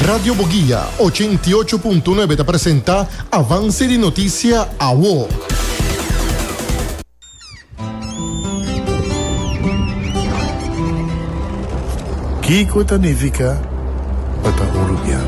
Radio Boguia, ochenta i ocho punto nuebe ta presenta avanse di notisia awo. Kiko ta nifica pa ta un rubian?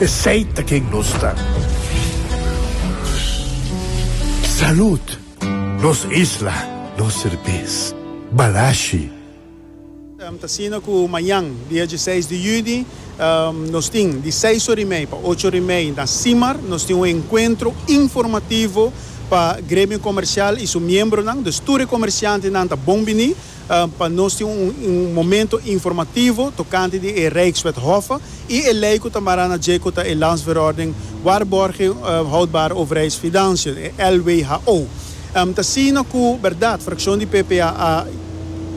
Esey ta ken nos ta. Salud. Nos isla, nos serbes. Balashi. Ta sino cu mañan, dia dieseis di juni, nos tin di seis ora y mei pa ocho ora y mei na Simar, nos tin un encuentro informativo pa gremio comercial y su miembronan. Dus tur e comerciantenan ta bon bini. pa nos tin un momento informativo tocante di e Rijkswet Hoffe y e ley cu ta mara na dje cu ta e Landsverordening Waarborging Houdbare Overheidsfinanciën, e LWHO. T'asina cu berdad fraccion di PP a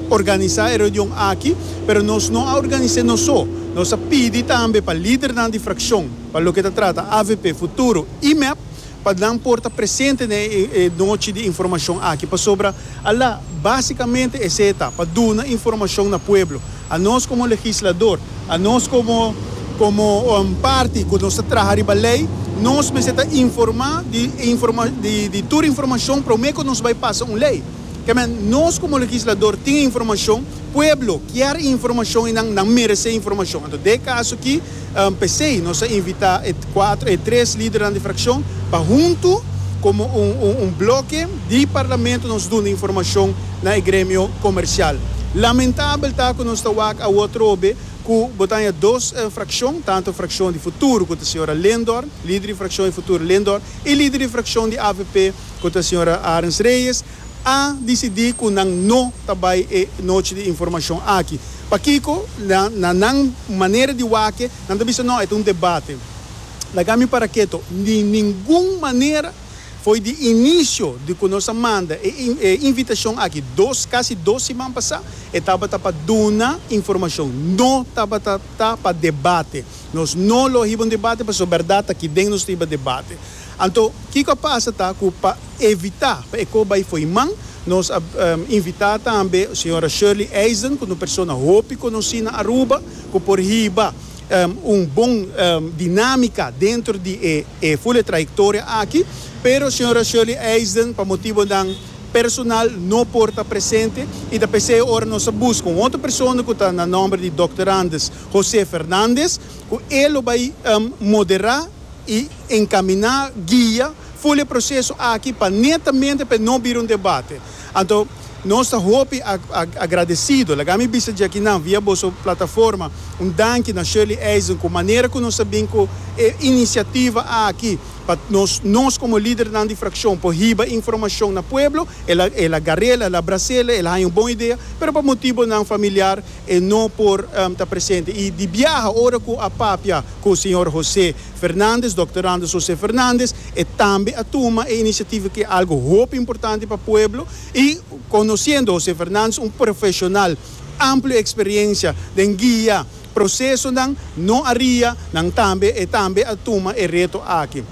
organisa e reunion aki, pero nos no a organise nos so. Nos a pidi tambe pa lidernan di fraccion pa loke ta trata avp, Futuro y mep, pa nan por ta presente na e nochi di informashon aki pasobra a la básikamente esei ta pa duna informashon na pueblo. Anos komo legislador, anos komo komo parti ku nos ta traha riba lei, nos mester ta informá di informa di di tur informashon promé ku nos bai pasa un lei. Kèmen nos komo legislador tin e informashon, pueblo kier e informashon i nan nan meresé e informashon. Anto den e kaso aki. P'esei nos a invitá e kuater, e tres lidernan di frakshon pa huntu komo un, un, un bloke di parlamento nos duna informashon na e gremio komersial. Lamentabel ta ku nos ta wak awor trobe ku bo taña dos frakshon, tantu frakshon di Futuro ku ta señora Lindor, lider di frakshon di Futuro Lindor, i lider di frakshon di avp ku ta señora Arens Reyes, a disidí ku nan no ta bai e Nochi di Informashon aki. Pakiko? Na nan manera di wak, nan ta bisa, No, e ta un debate. Laga mi para keto. Di ningun manera! Foi di inisio di ku nos a manda e invitashon aki dos, kasi dos siman pasá, e tabata pa duna informashon, no tabata ta pa debate. Nos no lo a hiba un debate, pasobra bèrdat ta ki den nos ta hiba debate. Anto, kiko a pasa ta ku pa evitá pa e kos bai fo'i man, nos a invitá tambe señora Shirley Eisen, ku ta un persona hopi konosí na Aruba, ku por hiba un bon dinámika dentro di e ful e trayektoria aki. Pero señora Shirley Eisen, pa motibonan personal, no por ta presente i ta p'esei ora nos a buska un otro persona ku ta na nòmber di Dòkter Anders José Fernández, ku e lo bai moderá. i encaminá guia full e proceso aki pa netamente pa e no bira un debate. Anto nos ta hopi agradecido. Laga mi bisa dje aki nan via boso plataforma un danki na Shirley Eisen cu manera cu nos a bin cu e iniciativa aki pa nos nos como lidernan di fraccion por hiba informacion na pueblo. El a garela, el a bracela, el a haña un bon idea pero pa motibonan familiar e no por ta presente. I di biaha ora ku a papia ku señor José Fernández, Dòkter Anders José Fernández, e tambe a tuma e inisiativa ku e algu hopi importante pa pueblo i konosiendo José Fernández un profeshonal amplio eksperiensia den guia prosesonan no aria nan tambe e tambe a tuma e reto aki.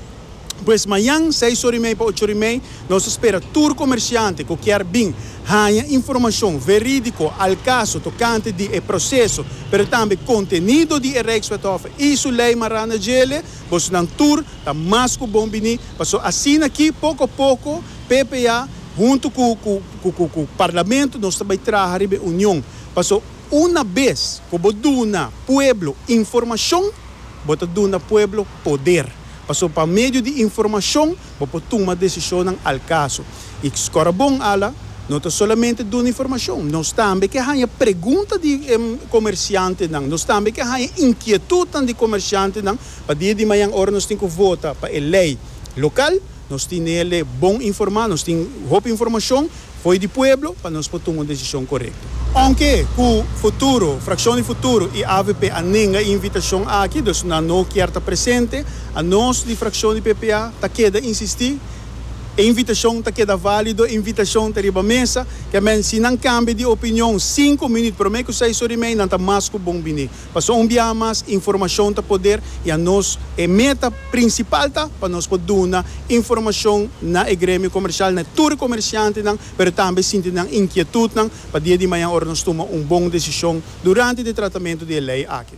Pues mañan seis ora i mei pa ocho ora i mei nos ta spera tur komersiante ku kier bin haña informashon verídiko al kaso tokante di e proseso pero tambe kontenido di e Rijkswethof i su lei Maranda Djele. Bosonan tur ta mas ku bon biní paso asina aki poko poko PPA huntu ku ku ku Parlamento nos ta bai traha riba e union paso una bes ku bo duna pueblo informashon bo ta duna pueblo poder. Paso pa medio di informashon bo por tuma desishonnan al kaso. I Skora Bon Ala no ta solamente duna informashon, nos tambe ke haña pregunta di komersiantenan, nos tambe ke haña inkietutnan di komersiantenan pa dia di mañan ora nos tin ku vota pa e lei lokal. Nos tin el'e bon informá, nos tin hopi informashon fo'i di pueblo pa nos por tuma un desishon korekto. Ounke ku Futuro, Frakshon di Futuro i avp a nenga e invitashon aki, dus nan no kier ta presente, anos di frakshon di PPA ta keda insistí e invitashon ta keda válido, e invitashon ta riba mesa, kèmen si nan kambia di opinion sinku minüt promé ku seis ora i mei nan ta mas ku bon biní. Pasobra un biaha mas informashon ta poder i a nos e meta prinsipal ta pa nos por duna informashon na e gremio komersial, na e tur e komersiantenan, pero tambe sinti nan inkietutnan pa dia di mañan ora nos tuma un bon desishon durante di e tratamentu di e lei aki.